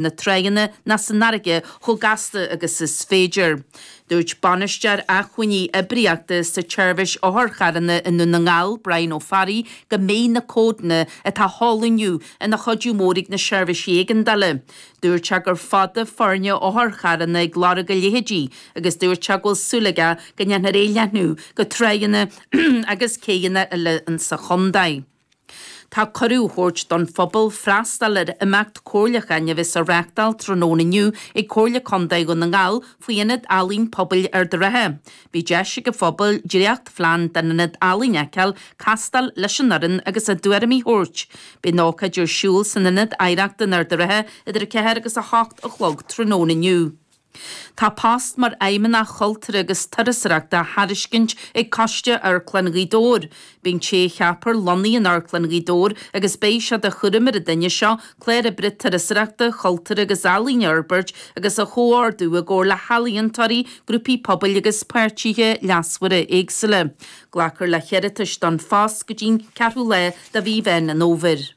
na tránna ná san fharraige chomh gasta agus is féidir. Dúirt Bainisteoir Acmhainní Oibríochta sa tSeirbhís Otharcharranna i nDún na nGall, Brian Ó Fearraigh, go mbeidh na códanna atá á sheoladh inniu ina chuidiú mór ag na seirbhísí éigeandála. Dúirt sé gur fada foirne otharcharranna ag lorg a leithéidí agus dúirt sé go bhfuil súil aige go ndéanfar é a leathnú go tránna agus céidheanna eile sa chontae. Tá cuireadh á thabhairt don phobal freastal ar imeacht comhairleacháin a bheas á reáchtáil tráthnóna inniu ag Comhairle Contae Dhún na nGall faoi Ionad Ealaíon Pobail Ard a' Rátha. Beidh deis ag an phobal dréachtphlean den ionad ealaíon a fheiceáil, castáil leis an fhoireann agus a dtuairimí a thabhairt. Beidh an ócáid ar siúl san Ionad Oidhreachta in Ard a' Rátha idir 4 agus 8 a chlog tráthnóna inniu. Tá post mar Fheidhmeannach Chultúir agus Turasóireachta á thairiscint ag Coiste Amharclann Ghaoth Dobhair. Beidh an té a cheapfar lonnaithe in Amharclann Ghaoth Dobhair agus beidh sé de chúram ar an duine seo clár oibre turasóireachta, cultúir agus ealaíon a fhorbairt agus a chomhordú i gcomhar le healaíontóirí, grúpaí pobail agus páirtithe leasmhara éagsúla. Glacfar le hiarratais don phost go dtí an ceathrú lá de mhí Mheán an Fhómhair.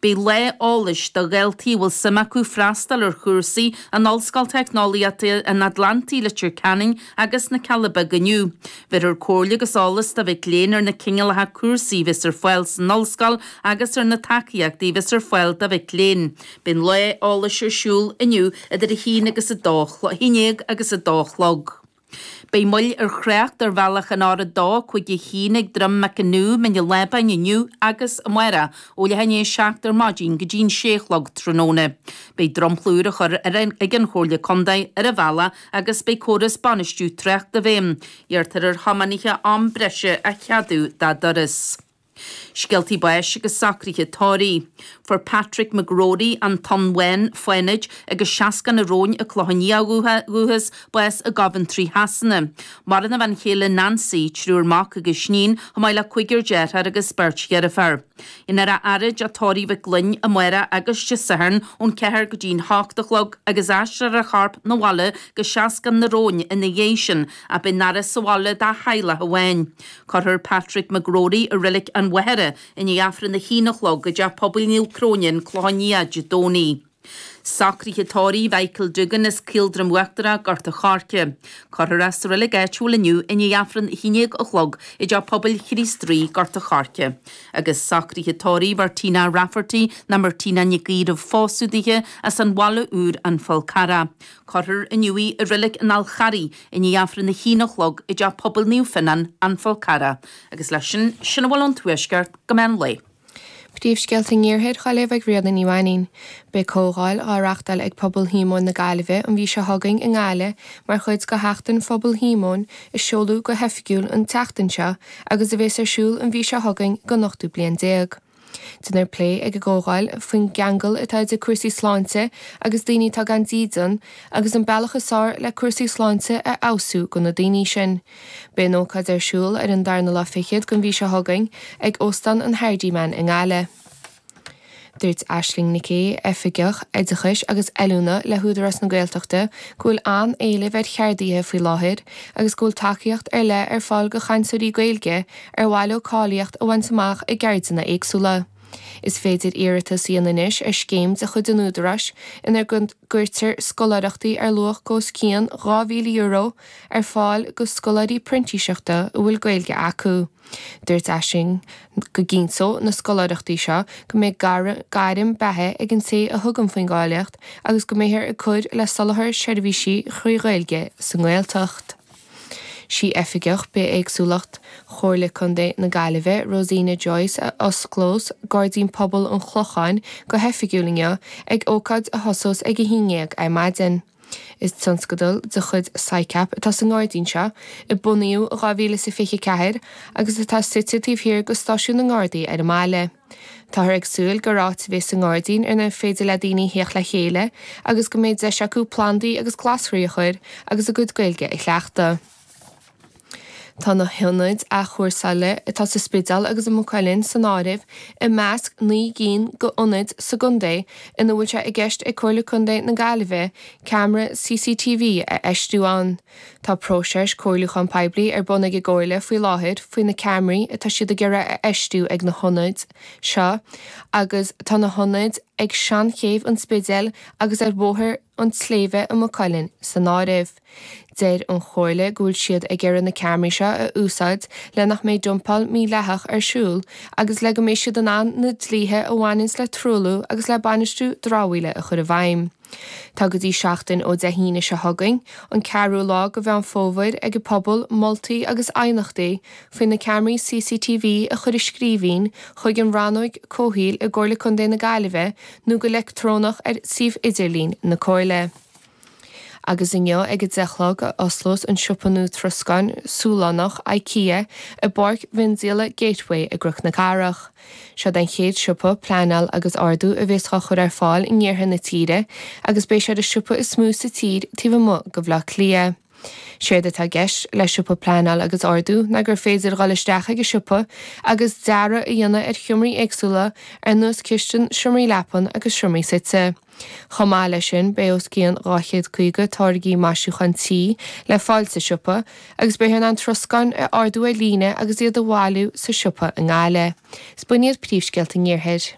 Beidh lá eolais do dhaltaí a bhfuil suim acu freastal ar chúrsaí in Ollscoil Teicneolaíochta an Atlantaigh Leitir Ceanainn agus na Cealla Beaga inniu. Bheirfear comhairle agus eolas do mhic léinn ar na cineálacha cúrsaí a bheas ar fáil san Ollscoil agus ar na tacaíochtaí a bheas ar fáil do mhic léinn. Beidh an lá eolais ar siúl inniu idir a haon agus, a haon déag agus a dó a chlog. Beidh moill ar thrácht ar bhealach an R251 ag Drumacanoo, Mín an Lábáin, inniu agus amáireach, ó leath i ndiaidh a seacht ar maidin go dtí an sé a chlog tráthnóna. Beidh dromchla úr á chur air ag an Chomhairle Contae ar an bhealach agus beidh córas bainistiú trácht i bhfeidhm. Iarrtar ar thiománaithe am breise a cheadú dá dturas. Scéaltaí báis agus socruithe tórraimh. Fuair Patrick McGrory, an Tóin Bhán, Fánaid, agus Seascann an Róin, An Clochán Liath ó dhúchas, bás i gCoventry Shasana. Maireann a bhean chéile Nancy, triúr mac agus iníon, chomh maith le cúigear dearthár agus beirt dheirféar. Déanfar é a fhaire i dTeach Tórraimh Mhic Fhloinn amáireach agus Dé Sathairn ón ceathair go dtí'n hocht a chlog agus aistreofar a chorp 'na bhaile go Seascann an Róin ina dhiaidh sin ach beidh an fhaire sa bhaile dá theaghlach amháin. Cuirfear Patrick McGrory i Reilig an Mhachaire i ndiaidh Aifreann a h-aon a chlog i dTeach Pobail Naomh Cróine, An Clochán Liath, Dé Domhnaigh. Socruithe tórraimh Mhichael Doogan as Caoldroim Uachtarach, Gort an Choirce. Cuirfear é sa reilig áitiúil inniu i ndiaidh Aifreann a h-aon déag a chlog i dTeach Pobail Chríost Rí, Gort an Choirce. Agus Socruithe tórraimh Mhartina Rafferty, ná Martina Nic Aoidh roimh phósadh daoithe as an Bhaile Úr, An Fál Carrach. Cuirfear inniu í i Reilig an Fháil Charraigh i ndiaidh Aifreann a haon a chlog i dTeach Pobail Naomh Fionnán, An Fál Carrach, agus leis sin, sin a bhfuil ón Tuaisceart go meán lae. Príomhscéalta an Iarthair dhaoibh ag Ríona Ní Mhainín. Beidh comhdháil á reachtáil ag Pobal Shíomóin na Gaillimhe an mhí seo chugainn i nGaillimh mar chuid de Sheachtain Phobal Shíomóin a seoladh go hoifigiúil an tseachtain seo agus a bheas ar siúl an mhí seo chugainn don ochtú bliain déag. Déanfar plé ag an gcomhdháil faoin gceangal atá idir cúrsaí sláinte agus daoine atá gan dídean, agus an bealach is fearr le cúrsaí sláinte a fheabhsú do na daoine sin. Beidh an ócáid ar siúl ar an darna lá fichead den mhí seo chugainn ag Óstán an Hardiman i nGaillimh. Dúirt Aisling Nic Aoidh, Oifigeach Oideachais agus Oiliúna le hÚdarás na Gaeltachta go bhfuil an-éileamh ar cheardaithe faoi láthair agus go bhfuil tacaíocht ar leith ar fáil do chainteoirí Gaeilge ar mhaith leo cáilíocht a bhaint amach i gceirdeanna éagsúla. Is féidir iarratas a dhéanamh anois ar scéim de chuid an Údaráis ina gcuirtear scoláireachtaí ar luach os cionn €2,000 ar fáil do scoláirí printíseachta a bhfuil Gaeilge acu. Dúirt Aisling go gcinnteoidh na scoláireachtaí seo go mbeidh gairm beatha ag an té a thugann faoin gcáilíocht agus go mbeifear ag cur le soláthar seirbhísí trí Ghaeilge sa nGaeltacht. Sí Oifigeach Bithéagsúlacht Chomhairle Contae na Gaillimhe, Rosina Joyce, a osclós Gairdín Pobail an Chlocháin go hoifigiúil inniu, ag ócáid a thosós ag 11:00 ar maidin. Is tionscadal de chuid SICAP atá sa ngairdín seo, a bunaíodh in 2024 agus atá suite taobh thiar de Stáisiún na nGardaí ar an mbaile. Táthar ag súil gur áit a bheas sa ngairdín inar féidir le daoine a thíocht le chéile agus go mbeidh deis acu plandaí agus glasraí a chur agus a gcuid Gaeilge a chleachtadh. Tá na hionaid athchúrsála atá sa Spidéal agus i Maigh Cuilinn san áireamh i measc naoi gcinn d'ionaid sa gcontae ina bhfuil sé i gceist ag Comhairle Contae na Gaillimhe ceamara CCTV a fheistiú ann. Tá próiseas comhairliúcháin poiblí ar bun ag an gComhairle faoi láthair faoi na ceamaraí atá siad ag iarraidh a fheistiú ag na hionaid seo agus tá na hionaid ag Seanchéibh an Spidéil agus ar Bhóthar an tSléibhe i Maigh Cuilinn san áireamh. Deir an Chomhairle go bhfuil siad ag iarraidh na ceamaraí seo a úsáid le nach mbeidh dumpáil mhídhleathach ar siúl agus le go mbeidh siad in ann na dlíthe a bhaineann le truailliú agus le bainistiú dramhaíola a chur i bhfeidhm. Tá go dtí seachtain ó Dé hAoine seo chugainn, an ceathrú lá de Mheán Fómhair, ag an bpobal moltaí agus aighneachtaí faoi na ceamaraí CCTV a chur i scríbhinn chuig an Rannóg Comhshaoil i gComhairle Contae na Gaillimhe nó go leictreonach ar suíomh idirlín na Comhairle. Agus inniu ag a deich a chlog a osclós an siopa nua troscáin Sualannach, IKEA, i bPáirc Mhiondíola Gateway i gCnoc na Cathrach. Seod é an chéad siopa, pleanáil agus ordú a bhéas dhá chur ar fáil in iarthar na tíre agus beidh sé ar an siopa is mó sa tír taobh amuigh de Bhleá Cliath. Séard atá i gceist le siopa pleanáil agus ordú ná gur féidir dhul isteach chuig an siopa agus dearadh a dhéanamh ar sheomraí éagsúla ar nós cistin, seomraí leapan agus seomraí suite. Chomh maith leis sin, beidh os cionn 250 táirgí maisiúchán tí le fáil sa siopa agus beifear in ann troscán a ordú ar líne agus iad a bhailiú sa siopa i nGaillimh. Is b'in iad príomhscéalta an Iarthair.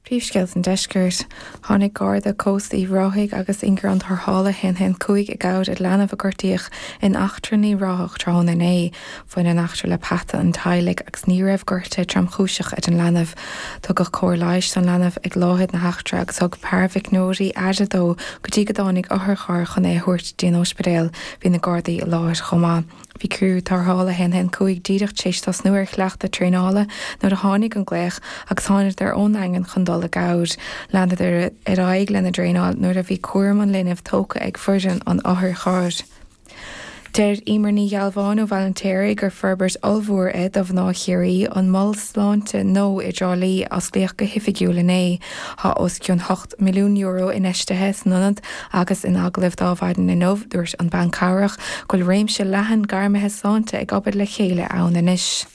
Príomhscéalta an Deiscirt. Tháinig Garda Cósta Uíbh Ráthaigh agus ingearán tarrthála 115 i gcabhair ar leanbh a gortaíodh in eachtra in Uíbh Ráthach tráthnóna inné. Bhain an eachtra le peata an teaghlaigh agus ní raibh gortú tromchúiseach ar an leanbh. Tugadh cóir leighis don leanbh ag láthair na heachtra agus thug paraimhíochaineoirí aire dó go dtí go dtáinig otharcharr chun é a thabhairt dtí an ospidéal. Bhí na Gardaí i láthair chomh maith. Bhí criú tarrthála 115 díreach tar éis tosnú ar chleachtadh traenála nuair a tháinig an glaoch agus tháingadar ón nDaingean chun dul i gcabhair. Leanadar ar aghaidh lena dtraenáil nuair a bhí cúram an linbh tógtha ag foireann an otharchairr. Deir Emer Ní Ghealbháin ó Bhaile an tSléibhe gur forbairt ollmhór é do mhná Chiarraí an Mol Sláinte nua i dTrá Lí a osclaíodh go hoifigiúil inné. Tá os cionn €8 milliún infheistithe san ionad agus in agallamh linn maidin inniu dúirt an banchabhrach go bhfuil réimse leathan gairmithe sláinte ag obair le chéile ann anois.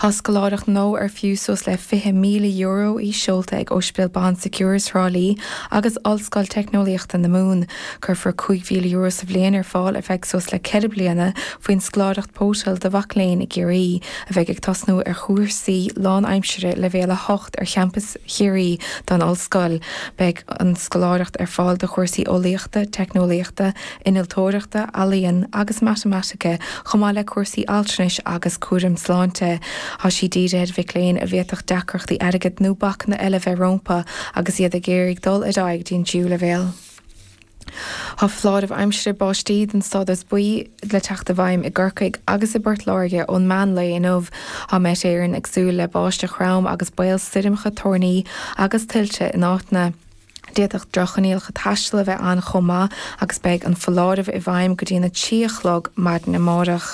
Tá scoláireacht nua ar fiú suas le €20,000 í seolta ag Ospidéal Bon Secours Thrá Lí agus Ollscoil Teicneolaíochta na Mumhan. Cuirfear €5,000 sa bhliain ar fáil ar feadh suas le ceithre bliana faoin scoláireacht Potel do mhic léinn i gCiarraí a bheidh ag tosnú ar chúrsaí lánaimsire leibhéal 8 ar champas Chiarraí den ollscoil. Beidh an scoláireacht ar fáil do chúrsaí eolaíochta, teicneolaíochta, Innealtóireachta, Ealaíon agus Matamaitice, chomh maith le cúrsaí altranais agus cúraim sláinte. Tá sí dírithe ar mhic léinn a bhféadfadh deacrachtaí airgid nó bacanna eile bheith rompu agus iad ag iarraidh dul ar aghaidh dtí an tríú leibhéal. Tá foláireamh aimsire báistí den stádas buí le teacht i bhfeidhm i gCorcaigh agus i bPort Láirge ón meán lae inniu. Tá Met Éireann ag súil le báisteach throm agus baol stoirmeacha toirní agus tuilte in áiteanna. D'fhéadfadh drochchoinníollacha taistil a bheith ann chomh maith agus beidh an foláireamh i bhfeidhm go dtí an 3 a chlog maidin amárach.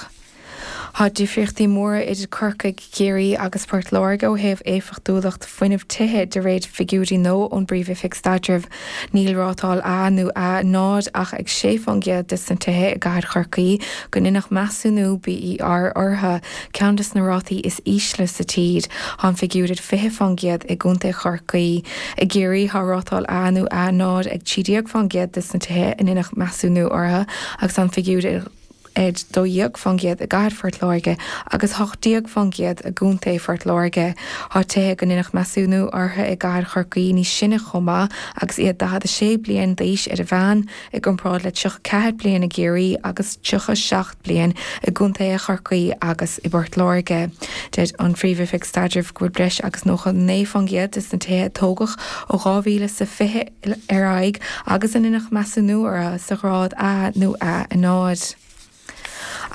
Tá difríochtaí móra idir Corcaigh, Ciarraí agus Port Láirge ó thaobh éifeachtúlacht fuinnimh tithe de réir figiúirí nua ón bPríomh-Oifig Staidrimh. Níl rátáil 'A' nó 'A0 ach ag 6% de na tithe i gcathair Chorcaí gur deineadh measúnú BER orthu, Ceann de na rátaí is ísle sa tír, tá an figiúr ar 20 fán gcéad i gContae Chorcaí. I gCiarraí tá rátáil A nó A0 ag 13 fán gcéad de na tithe a ndéanadh measúnú orthu agus tá an figiúr ar 12 fán gcéad i gcathair Phort Láirge agus 18 fán gcéad i gContae Phort Láirge. Tá tithe go ndéanadh measúnú orthu i gcathair Chorcaí níos sine chomh maith agus iad 46 bliain d'aois ar an meán. i gcomparáid le 34 bliain i gCiarraí agus 37 bliain i gcontaetha Chorcaí agus i bPort Láirge. Deir an Phríomh-Oifig Staidrimh go bhfuil breis agus 99% de na tithe a tógadh ó 2020 ar aghaidh agus a ndéanadh measúnú orthu sa ghrád A nó A0.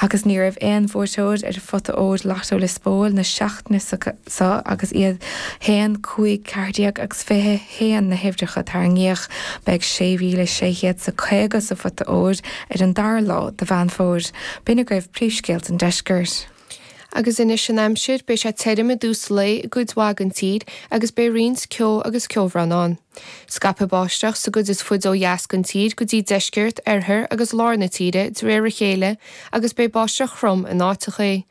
Agus ní raibh aon bhuaiteoir ar phota óir Lotto Lios Póil na seachtaine so agus iad a haon, cúig ceathair déag agus fiche haon na huimhreacha a tarraingíodh. Beidh sé mhíle sé chéad is caoga sa phota óir ar an dara lá de Mheán Fómhair. B'in agaibh príomhscéalta an deiscirt. Agus anois an aimsir, beidh sé tirim i dtús lae i gcuid mhaith den tír agus beidh roinnt ceo agus ceobhrán ann. Scaipfidh báisteach sa gcuid is faide ó dheas den tír go dtí deisceart, oirthear agus lár na tíre de réir a chéile agus beidh báisteach throm in áiteacha.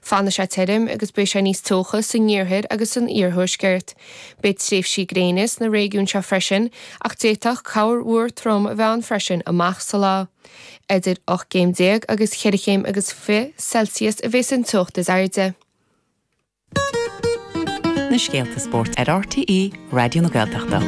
Fanfaidh sé tirim agus beidh sé níos teocha san iarthair agus san iarthuaisceart. Beidh tréimhsí gréine sna réigiúin seo freisin ach d'fhéadfadh corrmhúr trom a bheith ann freisin amach sa lá. Idir ocht gcéim déag agus cheithre chéim agus fiche Celsius a bheas an teocht is airde. Na scéalta spóirt ar RTÉ Raidió na Gaeltachta.